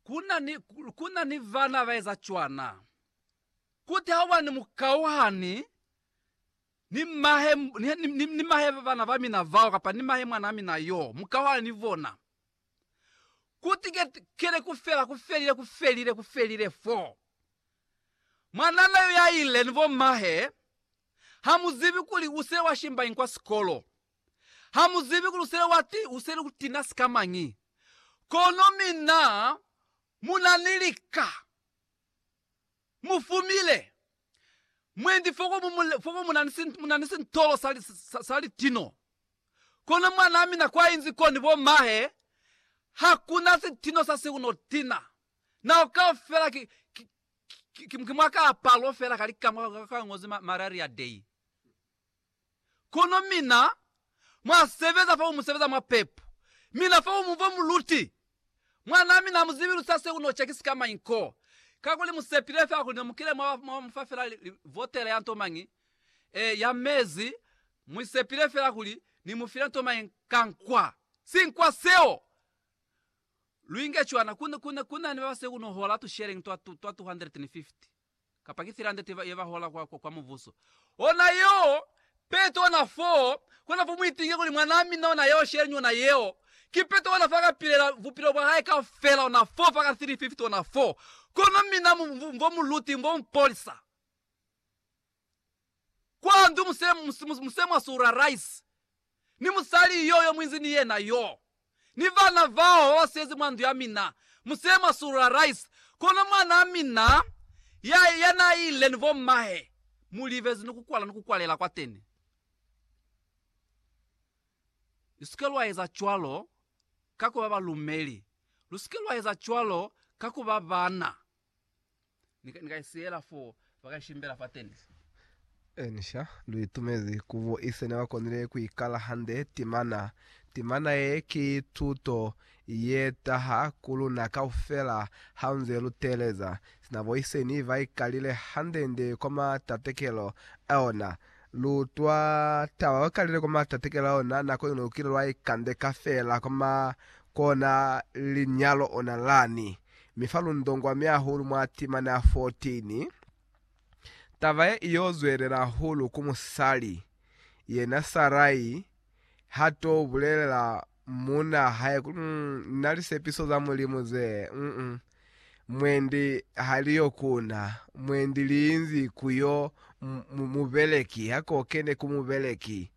Kuna ni, kuna ni vana baeza cwana. Kuti ha ubani mukauhani ni mahe, ni, ni, ni, ni mahe bana ba mina bao, kapa ni mahe mwana wa mina yo, mukauhani ni bona. Kuti ke, kene kufela, kufelile, kufelile, kufelile fo. Mwanana yo yaile ni bo mahe, hamuzibi kuli usile wa shimba inkwa sikolo. Ha mu zibi kuli usele wa ti, usele ku tina sika mañi. Kono mina mu na ni lika. Mu fumile. Mwendi foko mu, mu, foko mu na ni, si, mu na ni sintolo sa, li, sa, sa litino. Kono mwanaa mina kwa inzi ko ni bo mahe, ha ku na sitino sa si ku no tina. Nao kaufela ki, ki, ki, ki, ki mwa kaapalo fela ka lika mwa ka, ka ngozi ma, Malaria Day. Kono mina mwa sebeza fo mu sebeza mwa pepo. Mina fo mu fo mu luti. Mwanaa mina ha mu zibi lu sa se uno cheki sika mañi ko. Kakuli mu sepile fela kuli ne mu kile mwa mwa mu fa fela li, li votela ya nto mañi, eh, ya mezi, mu sepile fela kuli Ni mu file nto mañi ka nkwa. Sinkwa seo! Lu inge cwana. Ku ne, ku ne, ku na ni ba ba se uno hola tu sharing twa, twa 250. kapa ki tsela ndate ye ba hola kwa, kwa Mubuso. Ona yeo peto, ona foo, kona fo mu ipinge kuli, Mwanaa mina ona yeo, sheleñi ona yeo. Ki peto ona fo aka pilela bupilo bwa hae kaufela, ona foo, fa ka 350, ona foo. Kono mina, mu, mu, mu, vo mu luti, mu vo mu polisa. Kwa ndu muse mwa sura rice, ni musali yo yo muinzi ni yena yo, ni vana vao ba ba siyezi mwa ndu ya mina, muse mwa sura rice. Kono mwanaa mina ya, ya na ile ni bommahe, mu livezi ni ku kwala ni ku kwalela kwateni. Lu si ke lwa eza cwalo ka ku ba balumeli, lu si ke lwa eza cwalo ka ku ba bana. Ni ka i siyela fo, ba ka i shimbela fa tenis. Elisha lu itumezi ku bo ise ne ba konile ku i kala hande timana. Timana ye ki tuto ye taha ku luna kaufela haunze lu teeleza sina bo ise ni ba i kalile hande-nde kwa matatekelo a yona. Lu utwa taba ba kalile kwa matatekelo a yona, nako iñwi lu kile lwa ikandeka feela kwa ma, kona linyalo ona lani. Mi fa lundongwa myahulu mwa timana ya 14, taba ye iyo zwelela hahulu ku musali, yena Sarai ha to bulelela muuna hae kuli, Mu na lisepiso za Mulimu ze, mm, mwendi ha li yo ku na, mwendi li inzi ku yo mu, mu, mubeleki, ha ko kene ku mubeleki.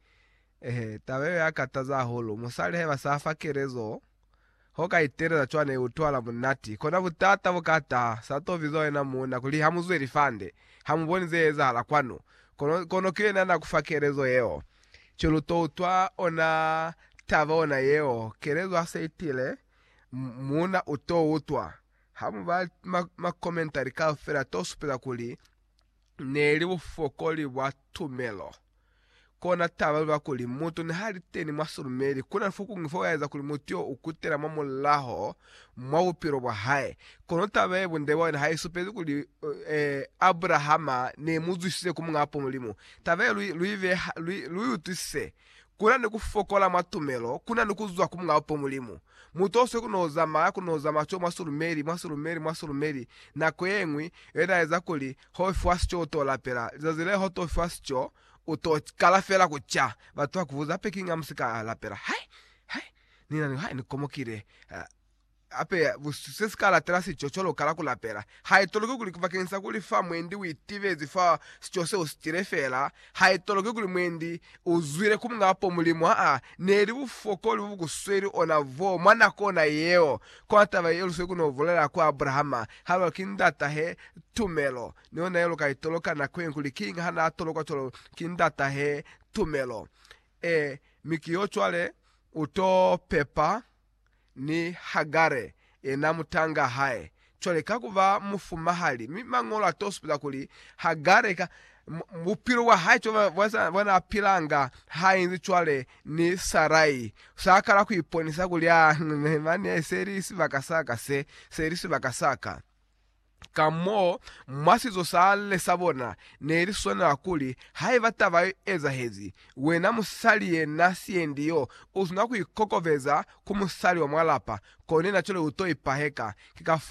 Eehe, taba yeo ya kataza hahulu. Musali haiba sa fa kelezo, ho ka iteleza cwana i utwala munati. Kona butata bu ka taha. Sa to bizwa wena muuna kuli ha mu zwe lifande, ha mu boni ze ezahala kwanu. Kono, kono ki yena na ku fa kelezo yeo. Ki lu to utwa ona taba ona yeo. Kelezo ha se itile, muuna u to utwa. Ha mu bala ma, ma komentari kaufela, to supeza kuli, neli bufokoli bwa tumelo. Kona taba iba kuli mutu nihali teni mwa silumeli, kuna ni fokuñwi fokaeza kuli mutu yo ukutela mwa mulaho mwa bupilo bwa hae. Kono taba ye bunde bwa yona haisupezi kuli Abrahama neimuzwisize ku Muñaa Mulimu. Taba ye lu iutwisise Kuna ni ku fokola mwa tumelo, kuna ni ku zwa ku Mulao po Mulimu. Mutoswe ku no zamaya, ku no zamaya co mwa sulumeli, mwa sulumeli, mwa sulumeli. Nako yeñwi, yo ita eza kuli, ho fiwa sico u to lapela. Lizazi leo ho to fiwa sico, u to kala fela ku ca. Batu ba ku buza, Pekinga mu si ka lapela? Hai! Hai! Ni na ni, hai, ni komokile. Hape, se si ka latela sico cwalo kala ku lapela. Ha i toloki kuli bakeng sa kuli fa mwendi u itibezi fa sico se u si tile fela, ha i toloki kuli mwendi u zwile ku muñ'a po Mulimu. Ha ne li bufokoli bo bu ku sweli ona bo mwa nako ona yeo. Kono taba ye lusweli ku n'o bulela ku Abrahama, ha lu re, Ki ndatahe, tumelo. Ni ona ye lu ka i toloka nako yeñwi kuli kiñi ha n'a tolokwa cwalo, Ki ndatahe, tumelo. Ee, mi ki y'o cwale u t'o pepa. ni Hagare yena mutanga hae cwale ka kuba mufumahali. Mi Mañolo atosupila kuli Hagare ka bupilo bwa hae cwale bwanaapilanga hainzi cwale ni Sarai, sakala kuiponisa kuli a mane seli sibaka saka se, seli sibaka saka. Ka mo, mwa sizo sa le sa bona, ne li swanela kuli, haiba taba yo ezahezi, wena musali ye na siendi yo, u swanela ku ikokobeza ku musali wa mwa lapa, kone na cwale u to ipaheka. Ki ka fo